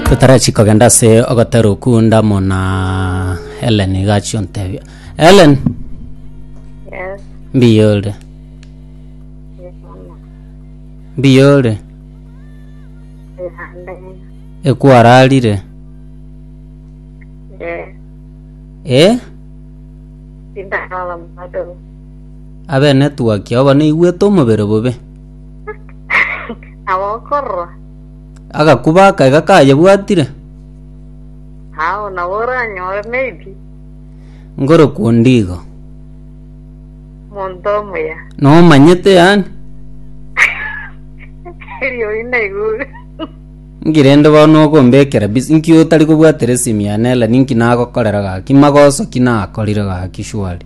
Totarachi kogenda ase ogotera okwo ndamona Ellen iga achia ontebia. Ellen, Yes, mbiya ore? yes, mama. Mbiya ore? Ihande. Ekwararire? Yes, Eh? sindakala bado. Abenetwaki obo naigwete omobere bobe. nabo okorora Agakuba akaega kayebwatire, ao nabo oranyore maybe ngorokwa onde igo. monto omuya Nomanyete yani, erio inaigure nki rende bono okombekera bisi? Nki otari kobwatera esimi yane Ellen? Nki nagokorera gaki? Magoso ki nakorire gaki shwari?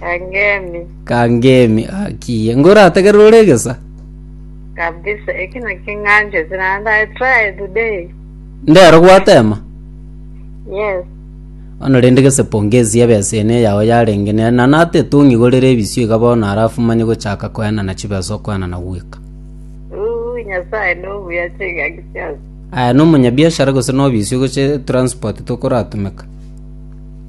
Kangemi. Kangemi akiye. Ah, Ngorategerere ore egesa. Kabisa, eki naki ng'anchete naende I try today. Ndero gwatema. Yes. Ono rende gese pongezi ya besa ene yao yarenge ne na nate tungi gorere ebisio iga bono arafu manye gochaka koena na chibesa okoena na gweka. Uu, nyasaye no buya chiga gisiasi. Aya no munyabiashara gose no bisio goche transport tokoratumeka.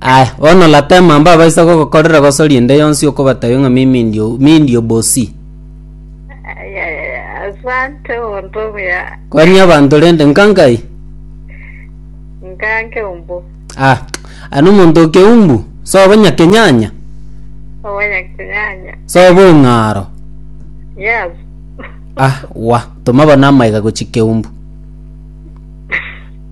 Aya, bono Latema mbabaisa gogokorera gosori ende yonsi okobatabia ng'a mimi ndio, mi ndio bosi. Aya, aya, asante omonto omuya. Kwani abanto rende nkankai? Nkanke umbu. Ah, ano omonto okeumbu, sobo nyakenyanya, Obanya kinyanya. sobo ong'aro. Yes. Ah, wa, toma bono amaiga gochia keumbu.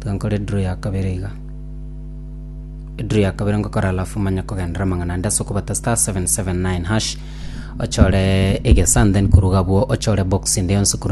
Tiga nkore draw ya kabere iga. Draw ya kabere ngokora alafu manya kogendera amang'ana ande ase okobata star 779 hash ochore egesa and then koruga bwo ochore box inde yonsi korwa